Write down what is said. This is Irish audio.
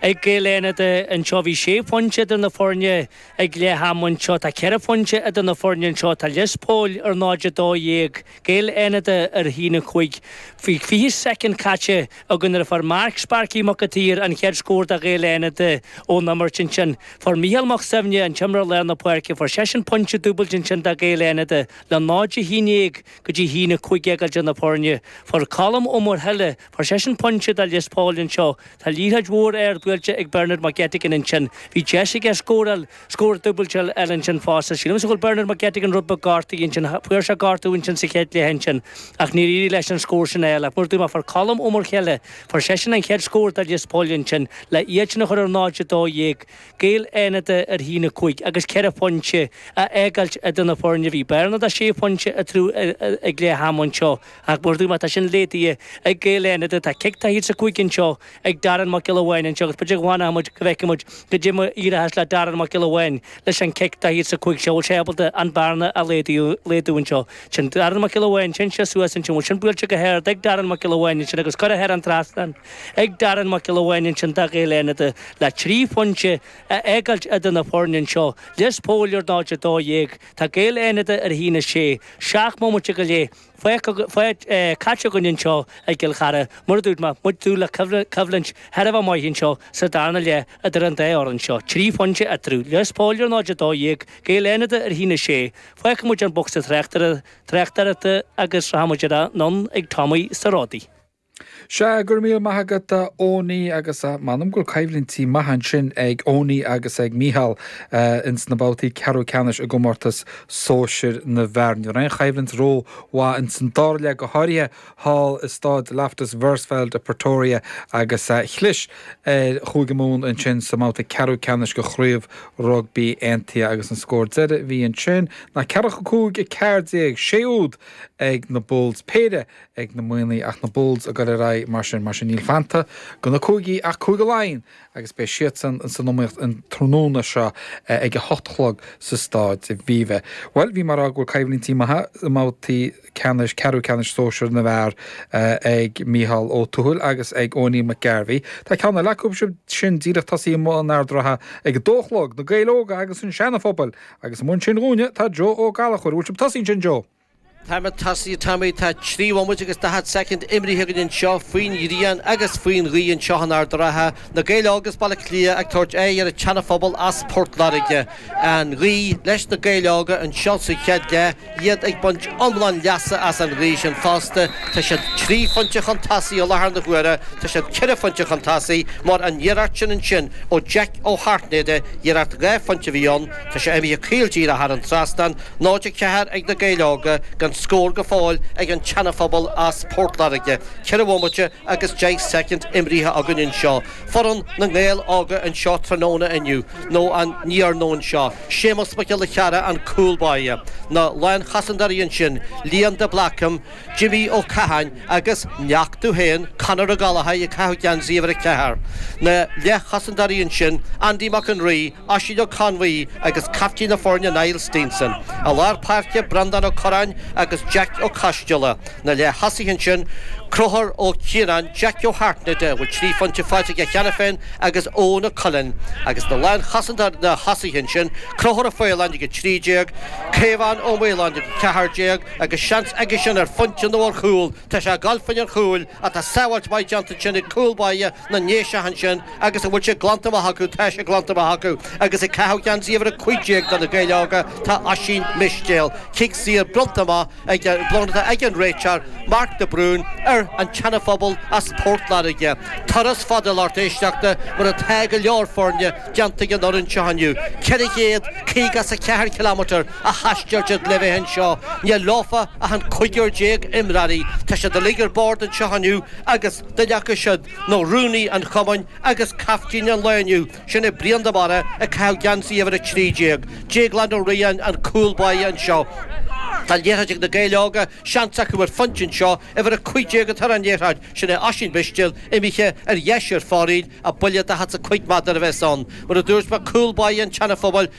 Ag Gaeil Fhánada anseo. Bhí sé pointe idir na foirne ag leath ama, anseo tá ceithre phointe idir na foirne, anseo tá Lios Póil ar 0, 12, Gaeil Fhánada ar a haon, 5. 20 soicind caite againn nuair a fuair Marc 'Sparky' Mac a' tSaoir an chéad scór do Ghaeil Fhánada ón imirt. Ansin fuair Micheál Mac Suibhne, an t-imreoir lár na páirce, fuair seisean pointe dúbailte ansin do Ghaeil Fhánada le 0, 11 go dtí a haon, 15 idir na foirne. Fuair Colm Ó Muirthile Fuair seisean pointe do Lios Póil anseo. Tá liathróid mhór ard buailte ag Bernard McGettigan ansin. Bhí deis aige scóráil scór dúbailte eile ansin fosta. Sílimse go bhfuil Bernard McGettigan rud beag gortaithe ansin. Fuair sé gortú ansin sa chéad cluiche ansin ach níor éirigh leis an scór sin a fháil. Ach mar a dúirt mé fuair Colm Ó Muirthile fuair seisean an chéad scór do Lios Póil ansin le iad sin a chur ar 0-12 Gaeil Fhánada ar a haon 5 agus 4 phointe a fhágáilt idir na foirne. Bhí bearna 6 phointe eatarthu ag leath ama anseo. Ach mar a dúirt mé tá sin laghdaithe ag Gaeil Fhánada tá cic taobhlíne sa chúinne anseo ag Darren Mac Giolla Bháin anseo agus b'fhéidir go bhfanfadh muid go bhfeicfidh muid goidé mar a éireochas le Darren Mac Giolla Bháin leis an cic taobhlíne sa chúinne seo bhfuil sé ábalta an bearna a laghdú anseo. Sin Darren Mac Giolla Bháin sin sé suas ansin bhfuil sin buailte go hard ag Darren Mac Giolla Bháin ansin agus curtha thar an trasnán ag Darren Mac Giolla Bháin ansin do Ghaeil Fhánada le trí phointe a fhágáilt idir na foirne anseo Lios Póil ar 0-12 tá Gaeil Fhánada ar 1-6 seacht mbomaite go leith Fágtar caite againn anseo i gCill Chartha, mar a dúirt mé, muid ag dúil le coimhlint thar a bheith maith anseo sa darna leath idir an dá fhoireann seo. Trí phointe eatarthu. Lios Póil ar 0-12, Gaeil Fhánada ar a haon 6. Fágfaidh muid an bocsa tráchtaireachta agus rachaidh muid anonn ag Tommy sa ródaí. Sea, go raibh míle maith agat a Eoiní agus m'anam go bhfuil coimhlintí maithe ansin ag Eoiní agus ag Mícheál ins na babhtaí ceathrú ceannais i gcomórtas sóisir na bhfear. Ní raibh aon choimhlint rómhaith ins an dara leath, go háirithe thall i Staid Loftus Versfeld i bPretoria agus chlis ar Chúige Mumhan ansin sa mbabhta ceathrú ceannais de Chraobh Rugbaí Aontaithe agus an scór deiridh a bhí ansin ná ceathracha cúig a ceathair déag, sé úd ag na Bulls, péire ag na Muimhnigh ach na Bulls ag dul ar aghaidh mar sin, mar sin níl fanta de na Cúigí ach Cúige Laighean agus beidh siadsan san iomaíocht an tráthnóna seo ag a hocht a chlog sa Staid Aviva. Bhuel, bhí mé ag rá go bhfuil coimhlintí maithe i mbabhtaí ceannais ceathrú ceannais sóisir na bhfear ag Micheál Ó Tuathail agus ag Eoiní McGarvey. Tá ceann eile acu sin díreach tosaithe in Ard an Rátha ag a dó a chlog, Na Gaeil Óga agus an Seana-Phobail, agus ina bhun sin dúinne tá Joe Ó Gallachóir. An bhfuil sibh tosaithe ansin, Joe? Tá muid tosaithe, Tommy. Tá trí bhomaite agus daichead soicind imrithe againn anseo, faoin ghrian agus faoin ghaoth anseo in Ard a' Rátha. Na Gaeil Óga as Baile Átha Cliath ag tabhairt aghaidh ar an tSeana-Phobal as Port Láirge. An ghaoth leis na Gaeil Óga anseo sa chéad leath, iad ag baint iomlán leasa as an ghaoth sin fosta. Tá siad trí phointe chun tosaigh i láthair na huaire. Tá siad ceithre phointe chun tosaigh mar an iarracht sin ansin ó Jack Ó hAirtnéide, iarracht dhá phointe a bhí ann. Tá sé imithe caol díreach thar an trasnán, 0-4 ag na Gaeil Óga gan scór go fóill ag an tSeana Phobal as Port Láirge, ceithre bhomaite agus deich soicind imrithe againn anseo. Foireann na nGael Óga anseo tráthnóna inniu, nó an iarnóin seo, Séamus Mac Giolla Cheara, an cúl báire, na lánchosantóirí ansin, Liam de Blácam, Jimmy Ó Catháin agus neach tú féin, Conor Ó Gallchóir ag caitheamh geansaí uimhir a ceathair, na leathchosantóirí ansin, Andy Mac an Rí, Oisín Ó Conmhaí agus captaen na foirne Niall Steenson. I lár páirce, Breandán Ó Curráin agus Jeaic Ó Coisdeala. Na leath-thosaithe ansin, Conchúr Ó Cianáin, Jack Ó hAirtnéide, a bhfuil trí phointe faighte aige cheana féin, agus Eoghan Ó Coileáin. Agus na lánchosanta na tosaithe ansin, Conchúr Ó Faoláin ag 13, Caomhán Ó Maoláin ag 14 agus seans aigesean ar phointe nó ar chúl. Tá sé ag dul fá dhéin an chúil. Ach tá sábháilt mhaith déanta ansin ag cúl báire na nDéiseach ansin agus an bhfuil sé glanta amach acu, tá sé glanta amach acu agus ag caitheamh geansaí uimhir 15 do Na Gaeil Óga tá Oisín Mistéil. Cic saor bronnta amach ag bronnta ag an réiteoir, Mark de Brún, ar an tSeanaphobal as Port Láirge. Turas fada a lucht éisteachta mar atá go leor foirne déanta ag an fhoireann seo inniu, 450 is a ceathair ciliméadar, a thaisteal siad le bheith anseo. Níl leofa ach an cúigear déag imreoirí. Tá siad uilig ar bord anseo inniu agus duine acu sin nó rúnaí an chumainn agus caiftín an lae inniu, sin é Brian de Barra ag caitheamh geansaí uimhir a trí déag. Déaglán Ó Riain an cúl báire anseo. Tá liathróid ag Na Gaeil Óga, seans acu ar phointe anseo. Uimhir a cúig déag atá ar an liathróid, sin é Oisín Mistéil, imithe ar dheis ar foraoil, a buille daichead 's a cúig méadar a bheas ann. Mar a dúirt mé, cúl báire an tSeana-Phobail